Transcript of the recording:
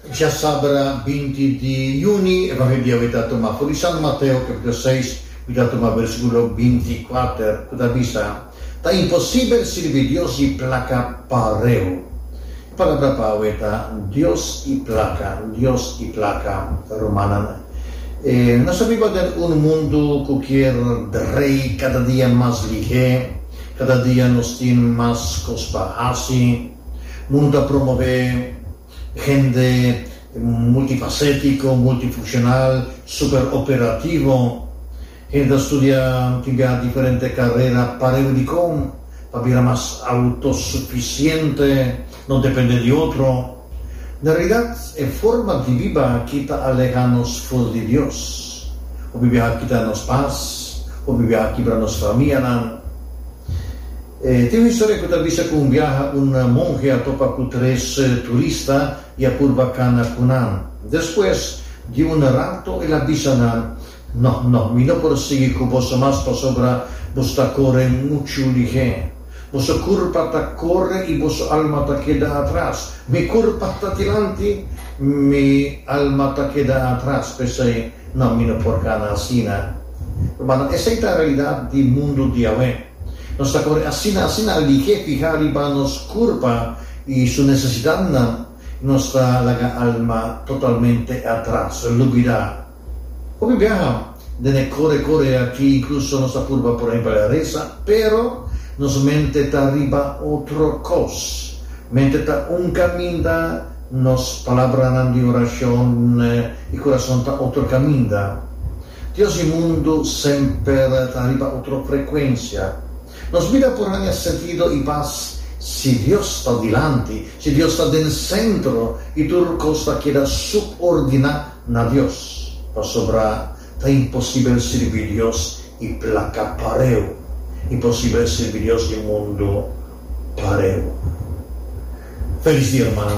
Dja sabra binti di juni e papia dia wi ta tuma pudi San Mateo kapitulo seis wi ta tuma bersikulo binti i kuater ku ta bisa, Ta imposibel sirbi Dios i plaka pareu. E palabra pau e ta Dios i plaka, Dios i plaka. Rumannan, nos ta biba den un mundu ku kier drei kada dia mas lihé, kada dia nos tin mas kos pa hasi. Mundo ta promové hende multifasétiko, multifunshonal, súper operativo. Hende ta studia tin biaha diferente karera pareu di kon pa bira mas autosufisiente, no dependé di otro. Na realidat, e forma di biba aki ta alehá nos ful di Dios. Hopi biaha kita nos pas, hopi biaha kibra nos famianan. Tin un historia cu ta bisa cu un biaha un monhe a topa cu tres turista y a purba cana cu nan. Despues di un rato el a bisa nan, No, no, mi no por sigui cu boso mas pasobra boso ta core muchu lihé. Boso curpa ta core y boso alma ta keda atras. Mi curpa ta dilanti, mi alma ta keda atras. P'esey, no, mi no por cana asina. Rumannan, esey ta realidad di mundu di awe. Nos ta kore asina, asina aligu'é fihá riba nos kurpa i su nesesidatnan, i nos ta laga alma totalmente atras, lubidá. Hopi biaha den e kore kore aki inkluso nos ta purba por ahempel resa, pero nos mente ta riba otro kos. Mente ta un kaminda, nos palabranan di orashon i kurason ta otro kaminda. Dios i mundu semper ta riba otro frekuensia. Nos bida por haña sentido i pas si Dios ta dilanti, si Dios ta den sentro i tur kos ta keda subordiná na Dios. Pasobra ta imposibel sirbi Dios i plaka pareu, imposibel sirbi Dios i mundu pareu. Felis dia, hermana.